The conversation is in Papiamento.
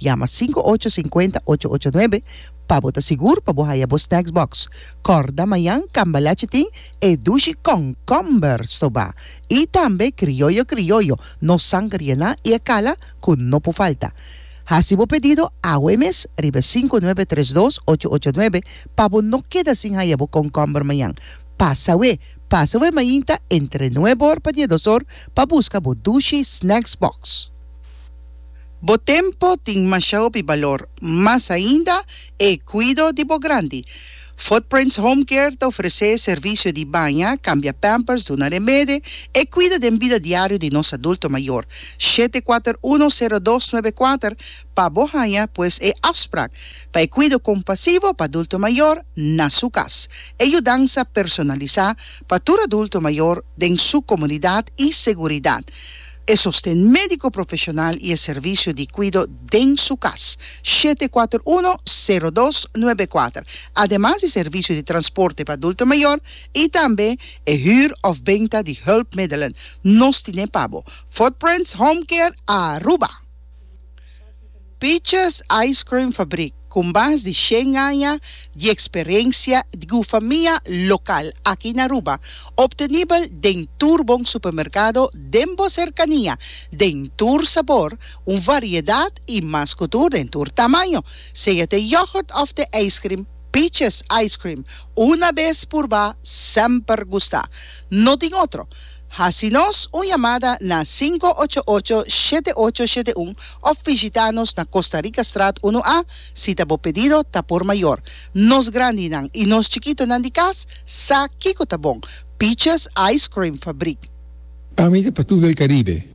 Yama sinku ocho sinkuenta ocho ocho nuebe pa bo ta sigur pa bo haya bo snacks box. Kòrda mañan Cambalache tin e dushi kònkòmber stobá i tambe krioyo krioyo, no sanger yená i e kala ku no por falta. Hasi bo pedido awo e mes riba e sinku nuebe tres dos ocho ocho nuebe pa bo no keda sin haya bo kònkòmber mañan. Pasa we, pasa we mainta entre nuebe or pa dies dos or pa buska bo dushi snacks box. Bo tempo tin masha hopi balor, mas ainda e cuido di bo grandi. Footprints Home Care ta ofrece servicio di baña, cambia pampers, duna remede, e cuido den bida diario di nos adulto mayor. Shete kuater uno sero dos nuebe kuater pa bo haña pues e afsprak pa e cuido compasivo pa adulto mayor na su cas. E yudansa personalisa pa tur adulto mayor den su comunidad y seguridad. E sosten médiko profeshonal i e servisio di kuido den su kas, shete kuater uno, sero dos, nuebe kuater, ademas di servisio di transporte pa adulto mayor i tambe e hür òf benta di hùlpmiddelen, nos tine pa bo, Footprints Home Care Aruba. Peaches Ice Cream Fabrik, ku mas di shen aña di eksperensia i ku famia lokal aki na Aruba, optenibel den tur bon supermerkado den bo serkania, den tur sabor, un variedat i mas ku tur den tur tamaño. Sea t'e yogurt òf t'e ijskrim, Peaches Ice Cream, una bes purbá, semper gustá. No tin otro. Hasi nos un yamada na sinku ocho ocho shete ocho shete un of bishita nos na Costa Rica Straat unu A si ta bo pedido ta por mayor. Nos grandinan y nos chikitonan di cas sa kico ta bon, Peaches Ice Cream Fabriek. Ami ta pa tur del Caribe.